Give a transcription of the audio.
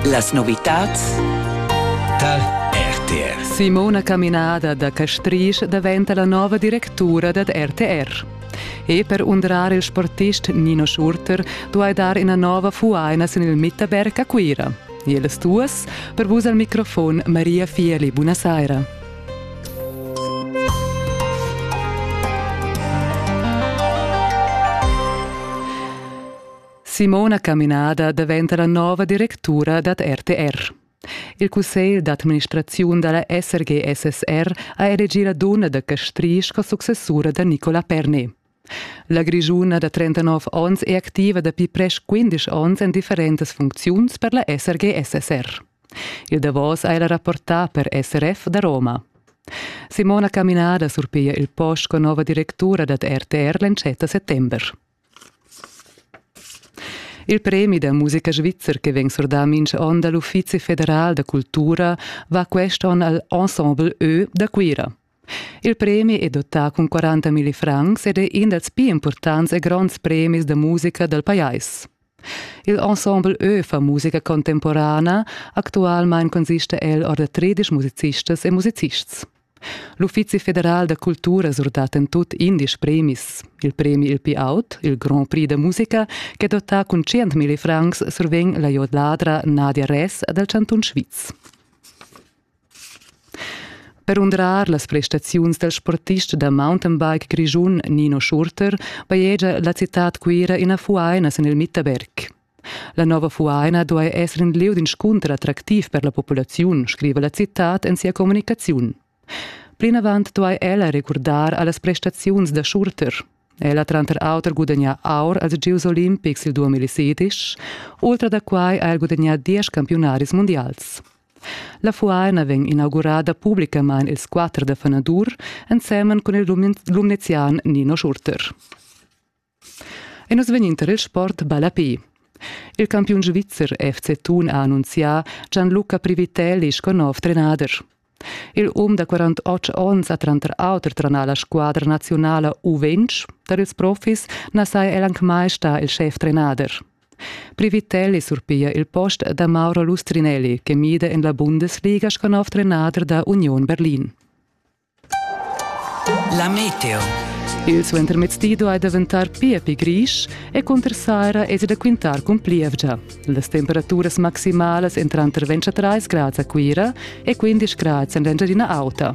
Las novitads Tal RTR. Simona Caminada da Castrisch daventa la nova directura dad RTR. E per undrar il sportist Nino Schurter duai dar ina nova fuaina sin il Mitterberg a Cuira. Jeles duas, per vus al microfon Maria Fieli. Buonasera. Simona Caminada daventa la nova directura dad RTR. Il cussegl d'administraziun dalla SRG-SSR ha elegì la dunna da Castrisch sco successura da Nicola Pernet. La Grischuna da 39 onns è activa dapi presch 15 onns en differentas funcziuns per la SRG-SSR. Il davos ha ella rapportà per SRF da Roma. Simona Caminada surpiglia il post con nova directura dad RTR l'entschatta settember. Il premi da musica svizzer che vegn surdà mintga onn dal Uffizi federal da cultura va quest onn al Ensemble Ö da Cuira. Il premi è dottà cun 40 milli francs ed è in dals pli impurtants e gronds premis da musica dal pajais. Il ensemble Ö fa musica contemporana. Actualmein consista el or da tredisch musicistas e musicists. L'Uffizi federal da cultura surdat en tut indies premis. Il premi il più aut, il Grand Prix da musica, che dota cun 100.000 francs survegn la jodladra Nadia Res dal Cantun Sviz. Per undrar las prestaziuns del sportist da mountainbike grischun Nino Schurter bajegia la citad Cuira ina fuaina sin il Mitterberg. La nova fuaina duai esser in lieu d'inscunter attractiv per la populaziun, scriva la citad en sia communicaziun. Plinavant duai ella recurdar allas prestaziuns da Schurter. Ella tranter auter gudagna aur als Gieus olimpics il 2016, ultra da quai ha el gudagnà diesch campiunaris mundials. La fuaina vegn inaugurada publicamain ils quatter da fanadur ensemen cun il lumnezian Nino Schurter. E nus vegnin tar il sport ballapi. Il campiun svizzer FC Thun ha annunzià Gianluca Privitelli sco nov trenader. Il um da 48 onns ha tranter auter tranà la squadra nazionala U20. Tar ils profis na saja el anc mai stà il schef trenader. Privitel e surpiglia il post da Mauro Lustrinelli che mida en la Bundesliga sco nov trenader da Union Berlin. La meteo. Il suentermezdi duai daventar pia pli grisch e cunter saira es da quintar cun plievgia. Las temperaturas maximalas en tranter 23 grads a Cuira e 15 grads en l'Engiadina Auta.